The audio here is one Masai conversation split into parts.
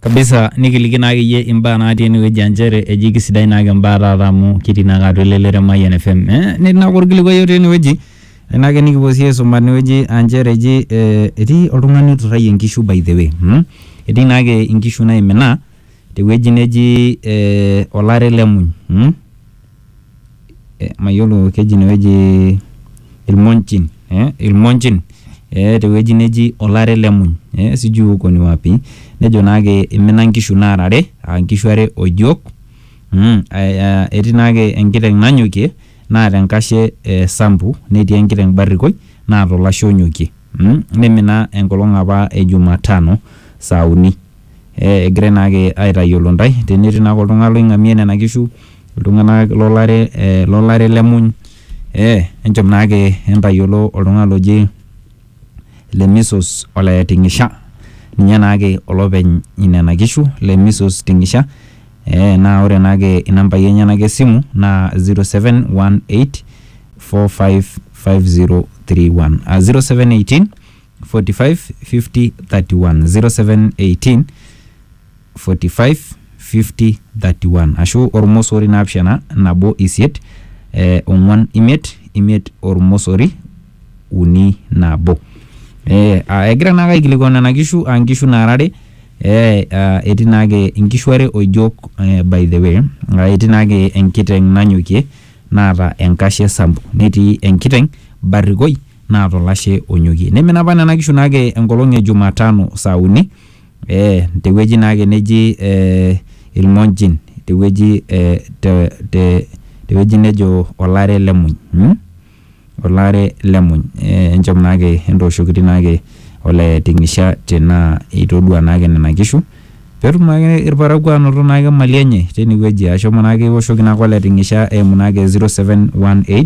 kabisa nikiliki naake iyie imbaa natii enewueji aa nchere eji kisidai naake imbaa taata amu kitii naake atua elelero e Mayian FM eh, netii naake orkilikuai otii enewueji naake nikipuo sii aisuma tenewueji aa nchere eji eh, etii oltung'ani oiturrayie inkishu by the way mm? etii naake inkishu naimina tewueji neji eh, olare lemuny mm? mayiolo keji ine wueji ilmonjin ee ilmonjin ee te wueji neji olare le muny ee sijui huko ni wapi nejo naake imina nkishu naara are aa nkishu are o jok mmh aa etii naake enkiteng' nanyokie naata enkashe ee sambu, netii enkiteng' barrikoi naata olashe onyokie mmh nimina enkolong' apa e juma tano saa uni. egirai naake aitayiolo intae tenetii naake oltung'ani loing'amie nena kishu iltung'anak lolare eh lolare lemuny eh enchom naake entayiolo oltung'ani loji Lemisos ole Ting'isha ninye naake olopeny inena kishu Lemisos Ting'isha eh naa ore naake inambai enyenak esimu naa 0718455031 uh, 0718 45 50 31 0718 45 50 31 ashu ormosori naapishana nabo isiet eh, ong'uan imiet imiet ormosori uni nabo eh, ah, egira naake aikilikuan nena kishu aa nkishu naara are eh, ah, etii naake inkishu are oijok eh, by the way ah, etii naake enkiteng nanyokie naata enkashe sambu netii enkiteng barrikoi naa to lashe onyokie. Neimina apa nena kishu naake enkolong e Jumatano saa uni ee te wueji naake neji ee Ilmonjin te wueji ee te te te wueji nejo Olare le Muny mm Olare le Muny. Enchom naake entooshokiti naake ole Ting'isha tenaa itodua naake nena kishu peetum naake irparakuo aanoto naake imali enye teine wueji. Ashomo naake iwoshoki naake ole Ting'isha eimu naake 0718.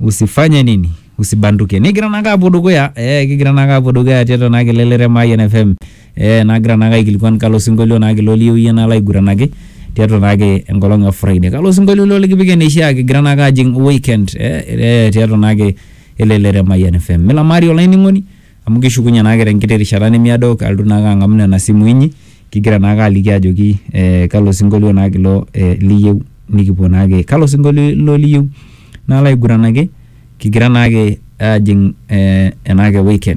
usifanye nini usibanduke nigira naake apuo dukuya eh, kigira naake apuo dukuya tiatua naake elelero e Mayian FM eh, nagira naake aikilikuan kalo sinkolio naake ilo liyieu iyie nalo aiguranaki tiatua naake enkolong e Friday kalo sinkolio ilo likipik eneishia kigira naake ajing weekend eh, eh, tiatua naake elelero e Mayian FM milamari olainining'oni Amu kishukunye naake te nkiti rishata nemiado alotu naake ang'amu nena simui inyi kigira naake aliki ajoki ee kalo sing'olio naake ilo ee liyeu nikipuo naake. Kalo sing'olio ilo liyeu nalo aiguranaki kigira naake aajing' ee enaake weekend.